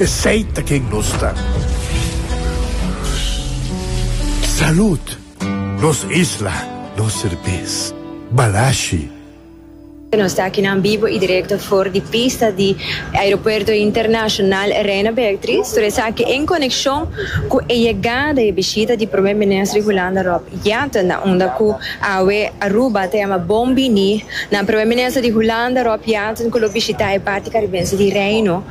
Esey ta ken nos ta. Salud! Nos isla, nos serbes. Balashi. Nos ta akinan bibo i direkto for di pista di Aeropuerto Internashonal Reina Beatriz, tur esaki en konekshon ku e yegada i e bishita di Prome Minister Hulanda Rob Jetten na unda ku awe Aruba ta yama Bon Bini na Prome Minister di Hulanda Rob Jetten ku lo bishitá e parti karibense di Reino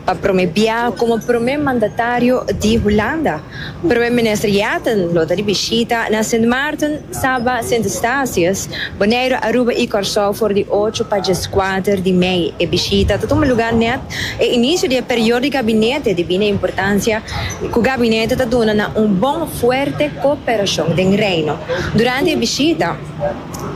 Pa prome biaha como Prome Mandatario di Hulanda, Prome Minister Yatten lo ta di bishita na Sint Maarten, Saba, Sint Eustatius, Boneiru, Aruba y Corsou for di ocho pa dieskuater di mei. E bishita ta tuma lugar net e inicio di e period di gabinete debi na importancia cu gabinete ta duna na un bon fuerte cooperacion den Reino. Durante e bishita,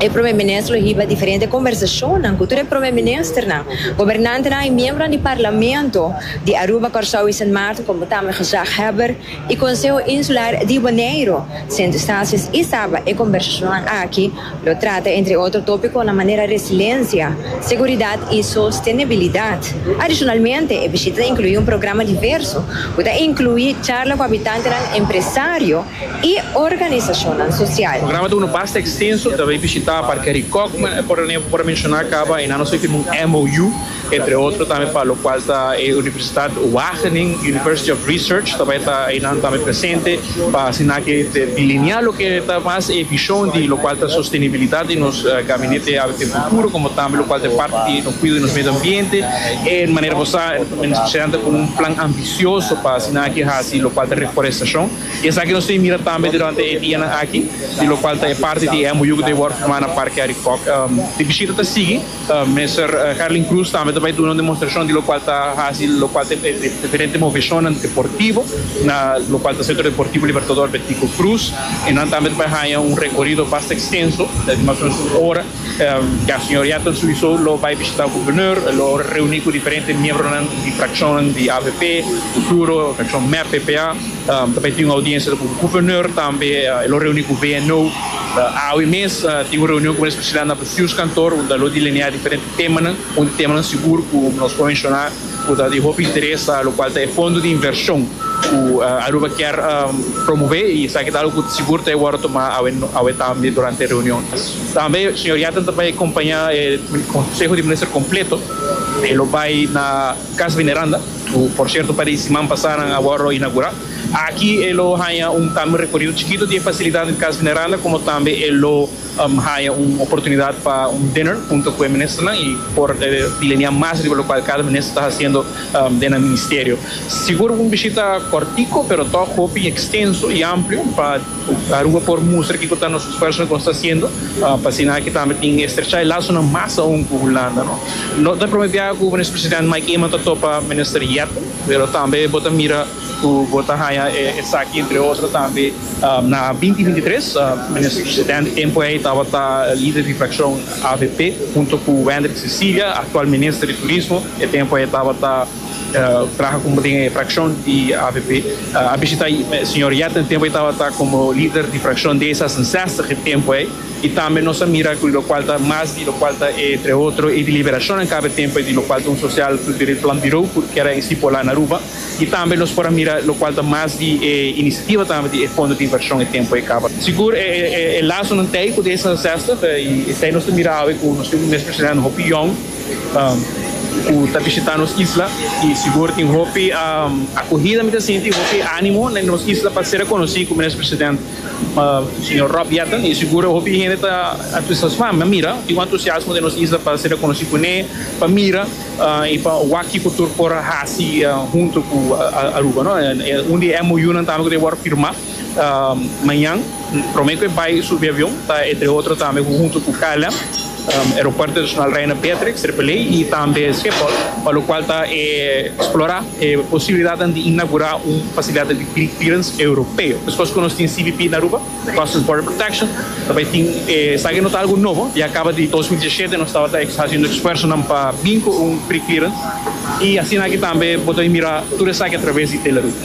E Prome Minister lo hiba diferente kombersashonnan ku tur e Prome Ministernan, gobernantenan i miembronan di Parlamento di Aruba, Kòrsou i Sint Maarten komo tambe gezaghebber i Konseho Insular di Boneiro. Sento Stasies i Saba e kombersashonnan aki lo trata entre otro topikonan manera resilensha, seguridat i sostenibilidat. Adishonalmente e bishita ta inkluí un programa diverso ku ta inkluí charla ku habitantenan, empresario, i organisashonnan sosial. Programa ta unu basta ekstenso, ta bay bishitá Parke Harry Cockman, e por ane por menshoná kaba, enan nos bay firma un MOU, entre otro tambe pa lokual ta e Universitat Wageningen, University of Research, ta bay ta enan tambe presente pa asina ke ta delineá loke ta mas e bishon di lokual ta sostenibilidat di nos gabinete ABP futuro, komo tambe lokual ta e parti di nos kuido di nos medio ambiente, e manera bo sa, men espesialmente kon un plan ambisioso pa asina ke hasi lokual ta reforestashon. I esaki nos tin mira tambe durante e dianan aki, di lokual ta e parti di e MOU ku ta wòrdu firmá na Parke Arikòk. E bishita ta sigui, Minister Herlin Cruz tambe ta bai duna un demonstrashon di lokual ta hasi, lokual ta e diferente moveshonnan deportivo, na lokual ta Sentro Deportivo Libertador Betico Cruz, i nan tambe ta bai haña un rekorido basta ekstenso, di mas o menos un ora. Ya señoria ta suiso lo bai bishita gobernur, e lo reuni ku diferente miembronan di frakshonnan di avp, futuro frakshon mep, ppa. Ta bai tin un audiensia ku gobernur, tambe e lo reuni ku VNO. Awe mes tin un reunion ku minister Priscilla na bestuurskantoor unda lo delineá diferente temanan. Un di temanan sigur ku nos por menshoná ku ta di hopi interes lo kual ta e fondo di invershon ku Aruba kier promové i esaki ta algu ku sigur ta e wòrdu tomá awe tambe durante e reunion. Tambe señor Yatten ta bay acompaña e Conseho di Minister completo. E lo bay na Casa Veneranda, cu por cierto pare di siman pasa nan a wordo inaugura. Aki e lo haya un tambe un recorido chikito di e facilidad den Casa Veneranda como tambe e lo haya un oportunidad pa un dinner hunto cu e ministernan y por pilenear mas riba locual cada minister ta haciendo den nan Ministerio. Sigur un bishita cortico pero tok hopi extenso y amplio pa. Ta Aruba por mustra kiko ta nos esfuersonan ku nos ta hasiendo pa asina aki tambe tin estrecha e lasonan mas aun ku Hulanda. No ta prome biaha ku Minister Presidente Mike Eman ta topa Minister Jetten, pero tambe bo ta mira ku bo ta haña esaki entre otro tambe na binti binti tres Minister Presidente tempu ei tabata lider di frakshon avp hunto ku Wendrick Cecilia, aktual Minister di Turismo e tempu ei tabata. Traha como den e fraccion di avp. A bishita Señor Yet na tempo e tabata como lider di fraccion de zesenzestig e tempo ey. Y tambe nos a mira cu locual ta mas di locual ta entre otro e deliberacionnan caba e tempo ey di locual ta un social cu debe plan biro cu keda estipola na Aruba. Y tambe nos por a mira locual ta mas di e iniciativa tambe di e fondo di inversion e tempo ey caba. Sigur e lazonan tey cu de zesenzestig y tey nos ta mira awe cu nos tin un mes presidente hopi yong. ku ta bishitá nos isla i sigur tin hopi akohida mi ta sinti, hopi ánimo den nos isla pa ser rekonosí ku Minister President señor Rob Jetten i sigur hopi hende ta entusiasmá pa mira tin un entusiasmo den nos isla pa ser rekonosí ku ne pa mira i pa wak ku tur por a hasi huntu ku Aruba. Un di e MOUnan tambe ku ta wòrdu firmá. Mañan prome cu e bay subi avion ta entre otro tambe cu hunto cu KLM, Aeropuerto Internacional Reina Beatrix, AAA, y tambe Schiphol, pa locual ta e explora e posibilidadnan di inaugura un facilidad di clearance europeo. Despues cu nos tin CBP na Aruba, Customs Border Protection, ta bay tin esaki no ta algo nobo, ya caba di dos mil diesisiete nos tabata haciendo esfuerzonan pa bin cu un preclearance y asina aki tambe bo ta bin mira tur esaki a traves di Delaroute.